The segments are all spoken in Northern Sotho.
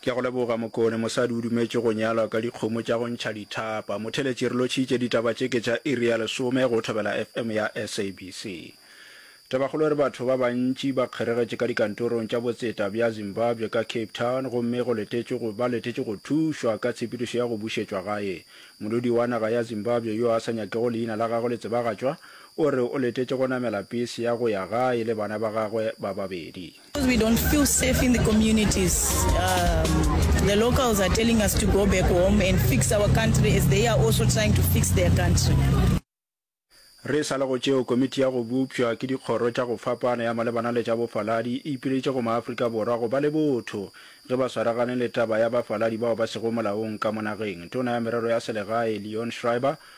Ke a go leboga Mokone, mosadi o dumetše go nyalwa ka dikgomo tša go ntšha dithapa. Motheletši re lotšhitše ditaba tše ke tša iri ya lesome go Thobela FM ya SABC. Tabakgolo e re batho ba bantši ba kgeregetše ka dikantorong tša botseta bja Zimbabwe ka Cape Town gomme go letetšwe go ba letetše go thušwa ka tshepedišo ya go bušetšwa gae. Molodi wa naga ya Zimbabwe yo a sa nyakego leina la gagwe le tsebagatšwa o re o letetše go namela pese ya go ya gae le bana ba gagwe ba babedi. Because we don't feel safe in the communities. Um, the locals are telling us to go back home and fix our country as they are also trying to fix their country. Re sa le go tšeo, komiti ya go bopšwa ke dikgoro tša go fapana ya malebana le tša bofaladi e ipiletše go maAfrika Borwa go ba le botho ge ba swaragane le taba ya bafaladi bao ba sego molaong ka mo nageng. Tona ya merero ya selegae Leon Schreiber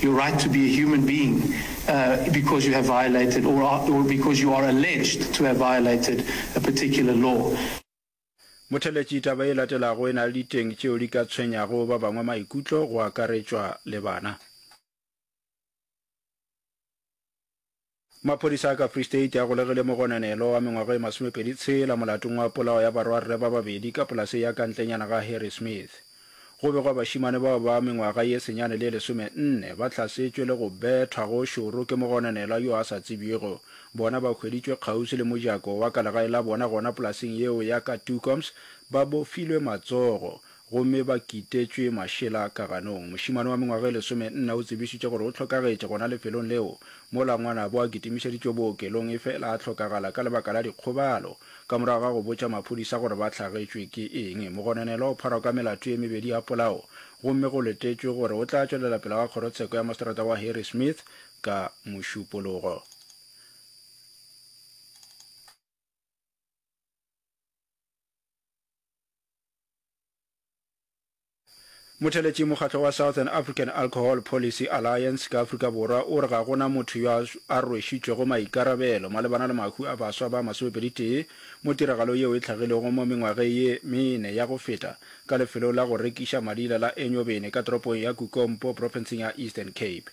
your right to be a human being uh, because you have violated or, are, or because you are alleged to have violated a particular law. Motheletši taba e latelago e na le diteng tšeo di ka tshwenyago ba bangwe maikutlo go akaretšwa le bana. Maphodisa a ka Free State a golegile mogononelo wa mengwaga e masomepedi tshela molatong wa polao ya barwarre ba babedi ka polase ya ka ntlenyana ga Harry Smith. Go begwa bašimane bao ba mengwaga ye senyane le lesome nne ba hlasetšwe le go bethwa go šoro ke mogononelwa yo a sa tsebjego. Bona ba hweditšwe kgauswi le mojako wa ka legae la bona gona polaseng yeo ya ka Tucoms ba bofilwe matsogo. gomme ba kitetšwe mašela ka ganong. Mošemane wa mengwaga e lesomenne o tsebišitše gore o hlokagetše gona lefelong leo mola ngwanabo a kitimišeditšwe bookelong efela a hlokagala ka lebaka la dikgobalo. Ka morago ga go botša maphodisa gore ba hlagetšwe ke eng, mogononelwa o pharwa ka melato ye mebedi ya polao gomme go letetšwe gore o tla tšwelela pele ga kgorotsheko ya maseterata wa Harrismith ka Mošupologo. Motheletši mokgatlo wa Southern African Alcohol Policy Alliance ka Afrika Borwa o re ga go na motho yo a rwešitšwego maikarabelo malebana le mahwi a baswa ba masomepeditee mo tiragalo yeo e tlhagilego mo mengwageng ye mene ya go feta ka lefelong la go rekiša madila la Enyobeni ka toropong ya Kukompo profenseng ya Eastern Cape.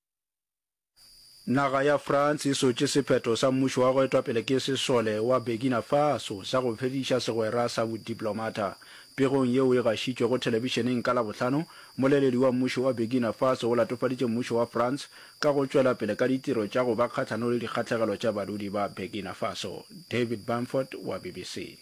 Naga ya France e sotše sephetho sa mmušo wa go etwa pele ke sesole wa Burkina Faso sa go fediša segwera sa bodiplomata. Pegong yeo e gašitšwego thelebišeneng ka Labohlano, moleledi wa mmušo wa Burkina Faso o latofaditše mmušo wa France ka go tšwela pele ka ditiro tša go ba kgahlano le dikgahlegelo tša badudi ba Burkina Faso. David Bamford wa BBC.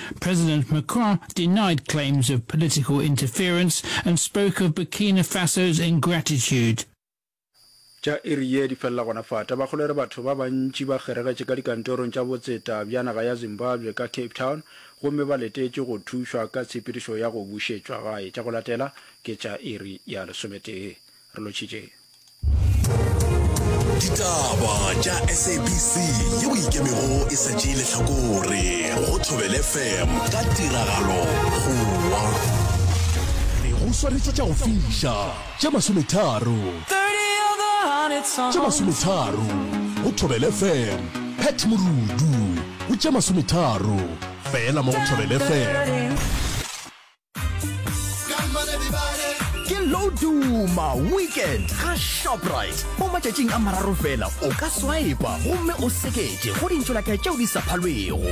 President Macron denied claims of political interference and spoke of Burkina Faso's ingratitude. Tša iri ye di felela gona fa. Tabakgolo e re batho ba bantši ba kgeregetše ka dikantorong tša botseta bja naga ya Zimbabwe ka Cape Town gomme ba letetše go thušwa ka tshepedišo ya go bušetšwa gae. Tša go latela ke tša iri ya lesometee. re lotšhitšeng ditaba tša sabc ye o ikemego e sa tšee lehlakore go thobele fm ka tiragalo gowa re go swanetše tša go fiša tša masometharo tša masometharo go thobele fm pet morudu o tša masometharo fela mo go thobele fm ke loduma weekend ga shoprite mo matšatšing a mararo fela o ka swipa gomme o seketše go dintšolatla tšeo di sa phalwego